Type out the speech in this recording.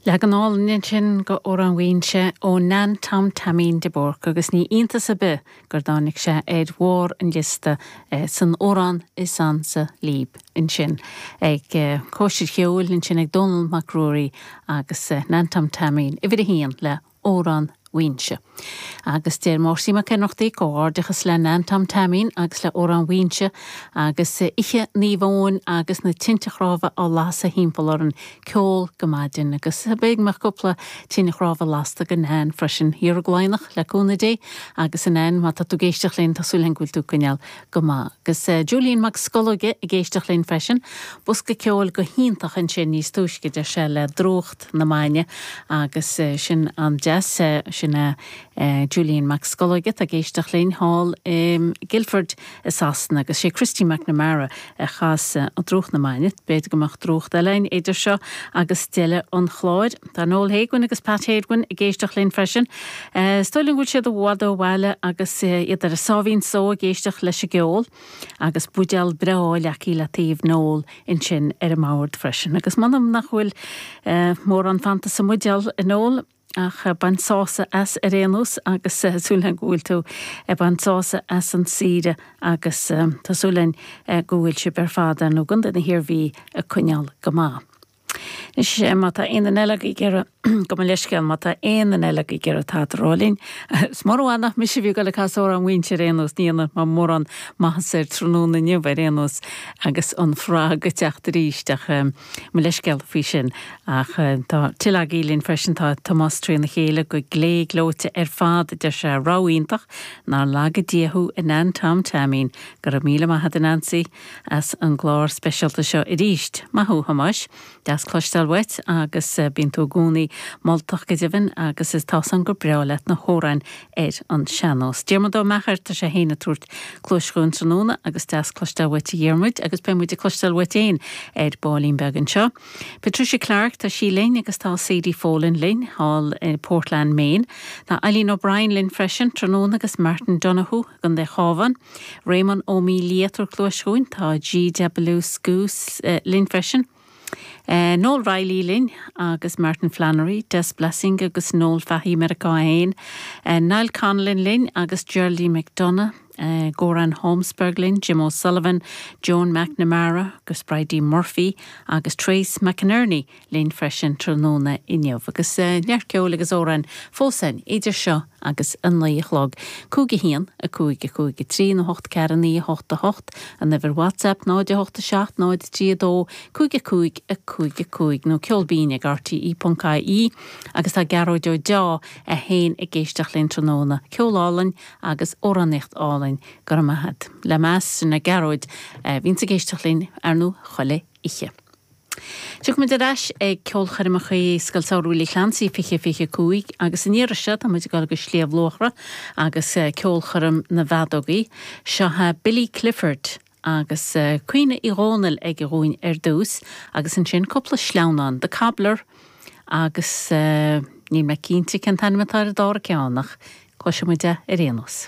Leagan álainn ansin go Amhrán Mhaínse ó Nan Tom Taimín de Búrca agus ní iontas ar bith gur tháinig sé ar bharr an liosta san amhrán is ansa lib ansin ag Cóisir Cheoil ansin ag Dónall Mac Ruairí agus Nan Tom Taimín, uimhir a haon le Amhrán Mhaínse. Agus deir Máirtín Mac Ionnrachtaigh, 'Comhghairdeachas le Nan Tom Teaimín agus le Amhrán Mhaínse agus Oíche Naomh Eoin agus na tinte chnámha á lasadh thimpeall orainn, ceol go maidin agus beidh mo chúpla tine chnámha lasta go Nan freisin, ar ball beag le cúnamh Dé agus a Nain má tá tú ag éisteacht linn tá súil againn go bhfuil tú ag coinneáil go maith. Agus Julian Mac Scolóige ag éisteacht linn freisin, bosca ceoil go hiontach ansin níos túisce deir sé le Drúcht na Maidne agus sin an-deas. Sin é Julian Mac Scolóig atá ag éisteacht linn thall i Guildford i Sasana agus sé Christy McNamara a chas Drúcht na Maidne. B'fhéidir go mbeadh drúcht eile ann idir seo agus deireadh an chláir. Tá Noel Héguin agus Pat Hédwin ag éisteacht linn freisin. Is dóigh liom go bhfuil siad i bhfad ó bhaile agus iad ar a sáimhín só ag éisteacht leis an gceol. agus buidéal breá acu le taobh Noel ansin ar an mbord freisin. Agus m'anam nach bhfuil mórán fanta sa mbuidéal, a Noel, ach bain sásamh as ar aon nós agus tá súil againn go bhfuil tú ag baint sásamh as an saoire agus tá súil againn go bhfuil sibh ar fad, ar ndóigh, Contae na hIarmhí ag coinneáil go maith. Anois, má tá aon duine eile ag iarraidh, gabh mo leithscéal, má tá aon duine eile ag iarraidh tada a rá linn, is murach nach mise a bhí ag dul ag casadh Amhrán Mhaínse ar aon nós, ní dhéanfaidh mé mórán maitheasa air tráthnóna inniu ar aon nós agus an frog ag teacht arís ach mo leithscéal faoi sin. Ach tá tuilleadh agaibh linn freisin, tá Tomás Tríona Chéile go glé gleoite ar fad, a deir sé, rogha iontach, nár laga Dia thú, a Nan Tom Teaimín. Go raibh míle maith a'd, a Nansaí. as an gclár speisialta seo arís. Maith thú, a Thomáis. Deas cloisteáil uait agus bíonn tú i gcónaí moltach go deimhin agus is tá a fhios againn gur breá leat na hamhráin ar an sean-nós. Diarmuid Ó Meachair, tá sé fhéin ag tabhairt cluais dhúinn tráthnóna agus deas cloisteáil uait a Dhiarmuid agus beidh muid ag cloisteáil uait fhéin ar baillín beag anseo. Patricia Clarke, tá sí linn agus tá Sadie Folan linn, thall i Portland, Maine. Tá Eileen O'Brien linn freisin tráthnóna agus Martin Donohoe i gContae Chabháin. Réamonn Ó Mílle ag tabhairt cluais dhúinn. Tá GW Sgus linn freisin. Noel Reilly linn agus Martin Flannery, Des Blessing agus Noel Fahy, Meiriceá é fhéin. Niall Connellan linn agus Geraldine McDonagh. Goran Holmsberg linn, Jim O'Sullivan, Joan McNamara, agus Bridie Murphy agus Trace McInerney linn freisin tráthnóna inniu. Agus neart ceoil agus amhráin fós againn idir seo agus a naoi a chlog. 'Cúig a haon, a cúig, a cúig a trí, náid a hocht ceathair a naoi a hocht a hocht, an uimhir WhatsApp, 0 8 7 0 3 2 5 a cúig, a cúig a cúig, nó Ceol Binn ag rte.ie Agus tá Gearóid Ó Deá ag éisteacht linn tráthnóna. Ceol álainn agus amhránaíocht álainn. Go raibh maith agat. Le meas, sin é Gearóid a bhíonns ag éisteacht linn, ar ndú, chuile oíche. Tiocfaimid ar ais ag ceolchoirmeacha Scoil Shamhraidh Willie Clancy 2025 agus an iarraidh seo, táimid ag dul go Sliabh Luachra agus ceolchoirm na bhfeadógaí. Seo Billy Clifford agus Caoineadh Uí Dhomhnaill aige dhúinn ar dtús agus ansin cúpla sleamhnán, The Cobbler agus níl mé cinnte cén t-ainm atá ar an dára ceann ach cloisimid é ar aon nós.